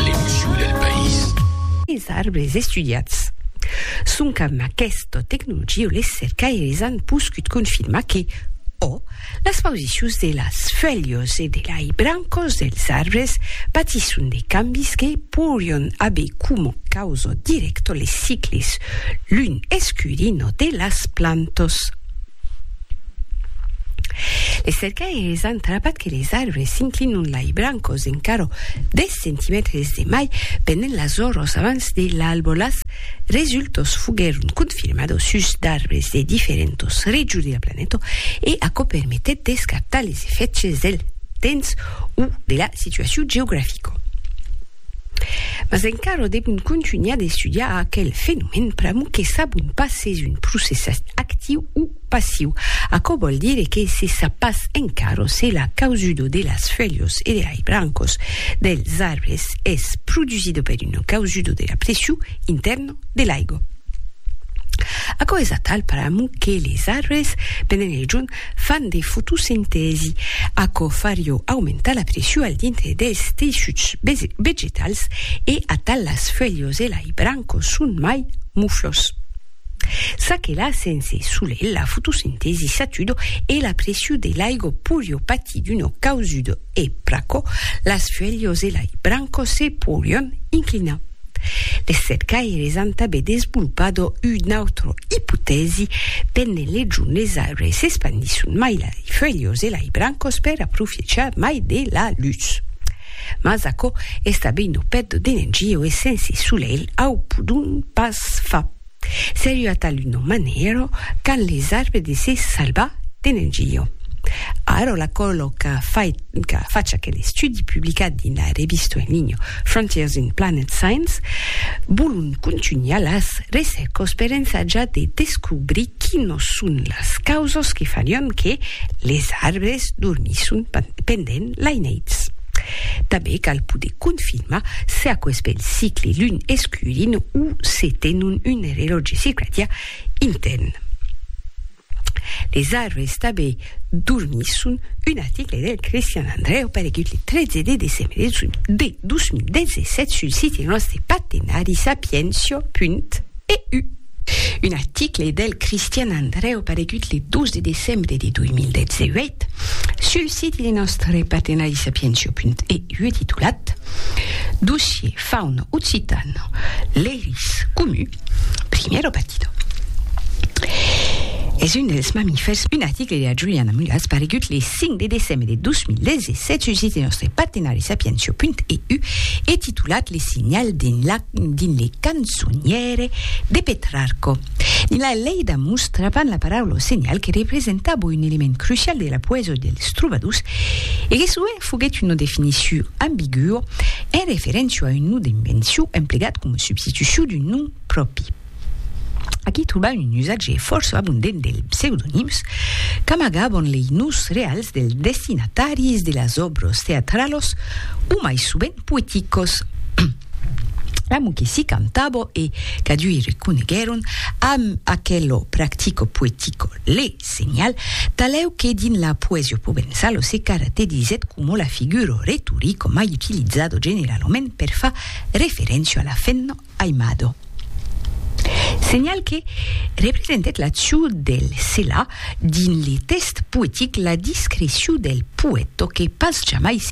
L'emocion del país. Es arbres estudiats. Sonc amb aquesta tecnologia les cercaires an poscut confirmar que, ò, las pausicions de las fuèlhas e de lai brancas dels arbres patisson de cambis que poirián aver coma causa dirècta les cicles lun-escurina de las plantas. Les cercaires an trapat que les arbres s'inclinon lai brancos encara 10 centimètres de mai pendent las oros abans de l'albolàs. Resultos foguèron confirmados sus d'arbres de diferentos regions de la planeta e aquò permetèt d'escartar les efèchs del temps o de la situacion geografica. Mas encara devon contunhar d'estudiar aquel fenomèn pr'amor que sabon pas s'es un procès actiu o passiu. Aquò vòl dire que se sap pas encara se la causudo de las fuèlhas e de lai brancas dels arbres es produsida per una causudo de la pression intèrna de l'aiga. Aquò es atal pr'amor que les arbres, pendent el jorn, Fan de fotosintèsi. Aquò farió aumentar la pression al dintre dels teissuts vegetals e atal las fuèlhos e lai brancos son mai muflos. Ça que la sense solelh la fotosintèsi s'atudo e la pression de l'aigo porió patir d'uno causudo e pr'aquò las fuelhos e lai brancos se porion inclinar. Les cercaires an tanben desvolpado un autre ipotèsi pendent les jornes arbres s'espandisson mai lai fuelhos e lai brancos per aprofechar mai de la lutz. Mas aquò es tanben un obècte d'energia e sense solelh au podon pas far. Serriu a taluna manèra qu'an les arbres de se salvar de Nangillo. Ara la còlo qu'a fach aquel estudi publicat dins la revista en linha Frontiers in Planet Science volon contunhar las recèrcas per ensajar de descobrir quinos son las causas que farián que les arbres dormisson pendent laineits. Tanben cal poder confirmar se aquò es ben cicle lun escurint o se tenon un relòtge circadià intèrn. Les arbres tanben dormisson, un article del Cristian Andreu paregut le 13 de decembre de 2017 sul site nòste partenari sapientia.eu. Un article del Cristian Andreu paregut le 12 de decembre de 2018 sul siti de nòstre partenari sapientio.eu titulat Dossier fauno occitano, l'eris comu, primiero partido. Es un dels mamifèrs, un article de la Juliana Mulas paregut le 5 de decembre de 2017 sul siti de nòstre partenari sapientio.eu e titulat Le signal d'un lac dins le cançoniere de Petrarco. Dins la Leida mostravan la paraula o senhal que representava un element crucial de la poesia dels trobadors e que sovent foguèt una definicion ambigua en referéncia a un nom d'invencion emplegat coma substitucion d'un nom pròpri. Aquí trobam un usatge fòrça abondent dels pseudonims qu'amagavan lei noms reals dels destinataris de las òbras teatralas o mai sovent poeticas. Amu que si cantabo e, cadui reconeguèron amb aquelo practico poetico le senhal, talèu que dins la poesia provença lo se caraterizèt coma la figuro retorico mai utilizado generalament per far referéncia a la femna aimado. Senhal que representèt l'acciu del se la dins le tèxt poetic la discreciu del poèto que pas jamai se.